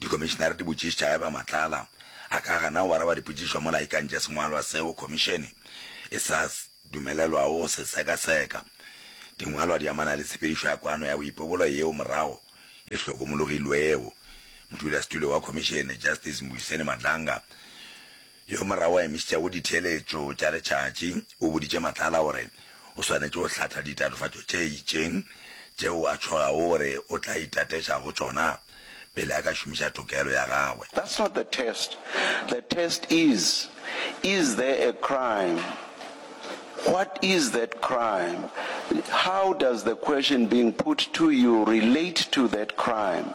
Dikomišenare di botšišitša haeba Matlala a ka gana go araba dipotšišo mola a ikantše sengwalwa seo Khomišene e sa dumelelwago go se sekaseka. Dingwalwa di amana le tshepedišo ya kwano ya boipobolo yeo morago e hlokomologilwego. Modulasetulo wa Khomišene, Justice Mbuyiseni Madlanga, Yo morago a emišitšego go ditheeletšo tša letšatši o boditše Matlala gore o swanetše go hlatha ditatofatšo tše itšeng tšeo a tšhogago gore o tla itateša go tšona pele a ka šomiša tokelo ya gagwe. That's not the test, the test is, is there a crime, what is that crime, how does the question being put to you relate to that crime.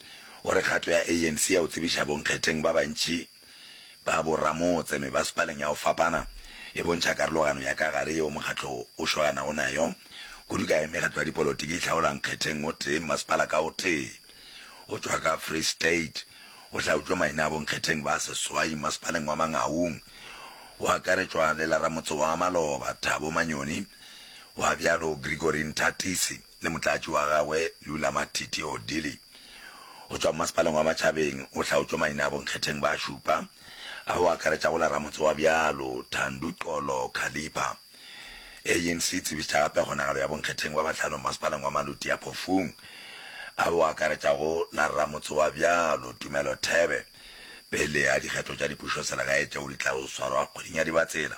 o re kgato ya ANC ya go tsebiša bonkgetheng ba bantši ba boramotse mebasepaleng ya go fapana e bontšha karologano ya ka gare yeo mokgatlo wo o swaganago nayo, kudu ka ge mekgatlo ya dipolotiki e hlaola nkgetheng o tee mmasepala ka o tee. Go tšwa ka Free State go hlaotšwe maina a bonkgetheng ba seswai mmasepaleng wa Mangaung, go akaretšwa le la ramotse wa Maloba, Thabo Manyoni, gwa bjalo Gregory Nthatisi. le motlatši wa gagwe Lula Matiti Odili go tšwa Mmasepaleng wa Matšhabeng o hlaotšwe maina a bonkgetheng ba šupa ao a akaretšago la ramotse wa bjalo Thando Xolo Khalipha. ANC e tsebišitše gape kgonagalo ya bonkgetheng ba bahlano Mmasepaleng wa Maluti a Phofung ao a akaretšago la ramotse wa bjalo Tumelo Thebe pele ga dikgetho tša dipušoselegae tšeo di tla yo swarwa kgweding ya Dibatsela.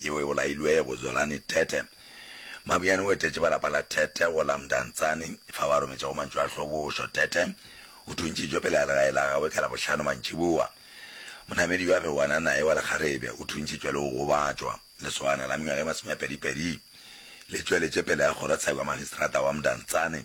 yeo e bolailwego, Zwelani Tete. Mabuyane o etetše ba lapa la Tete go la Mdantsane, fa ba rometša go mantšu a hlobošo. Tete o thuntšitšwe pele ga legae la gagwe ka Labohlano mantšiboa. Monamedi yo a bego a na naye wa lekgarebe o thuntšitšwe le go gobatšwa. Lesogana la mengwaga e masome a pedi pedi le tšweletše pele ga kgorotsheko ya Magistrata wa Mdantsane.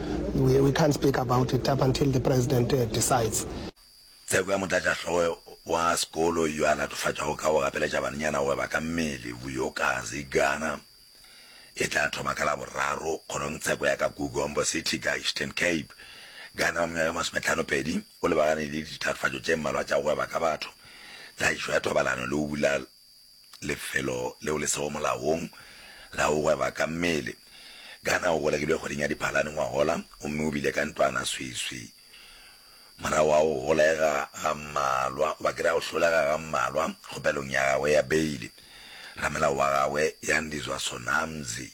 We, we can't speak about it up until the president decides. Tsheko ya motlatšahlogo wa sekolo yo a latofatšwago ka go gapeletša banenyana gore ba ka mmele, Vuyokazi Gana, e tla thoma ka Laboraro kgorong tsheko ya ka Gugombo City ka Eastern Cape. Gana wa mengwaga ye masometlhano pedi o lebagane le ditatofatšo tše mmalwa tša go gweba ka batho, tlaišo ya thobalano le go bula Lefelo leo le sego molaong la go gweba ka mmele. Gana o golegilwe kgweding ya Diphalane ngwagola gomme o bile ka ntlwana sweswi. Morago ga go golega ga mmalwa, o bakile a go hlolega ga mmalwa kgopelong ya gagwe ya beile, ramelao wa gagwe Yandiswa Sonamzi,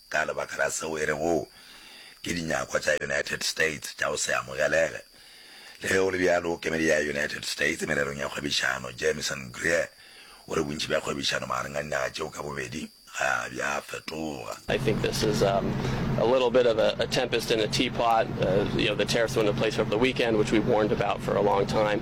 Ka lebaka la seo e rego ke dinyakwa tša United States tša go se amogelege. Le ge go le bjalo, kemedi ya United States mererong ya kgwebišano, Jamison Greer, o re bontši bja kgwebišano magareng ga dinaga tšeo ka bobedi ga bja fetoga. I think this is a little bit of a tempest in a teapot. You know, the tariffs were in place over the weekend, which we warned about for a long time.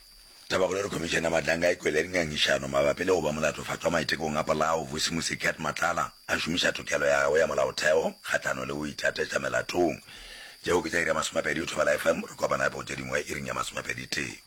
Tabakgolo e re Khomišene ya Mahlanka a e kwele ri ngangišano mabapi le go ba molatofatšwa maitekong a polao Vusi Musiket Matlala a šomiša tokelo ya gagwe ya molaotheo kgahlano le go itatetša melatong. Tšeo ke tša iri ya masomepedi go thobela FM, re kopana gape go tše dingwe iring ya masomepeditee.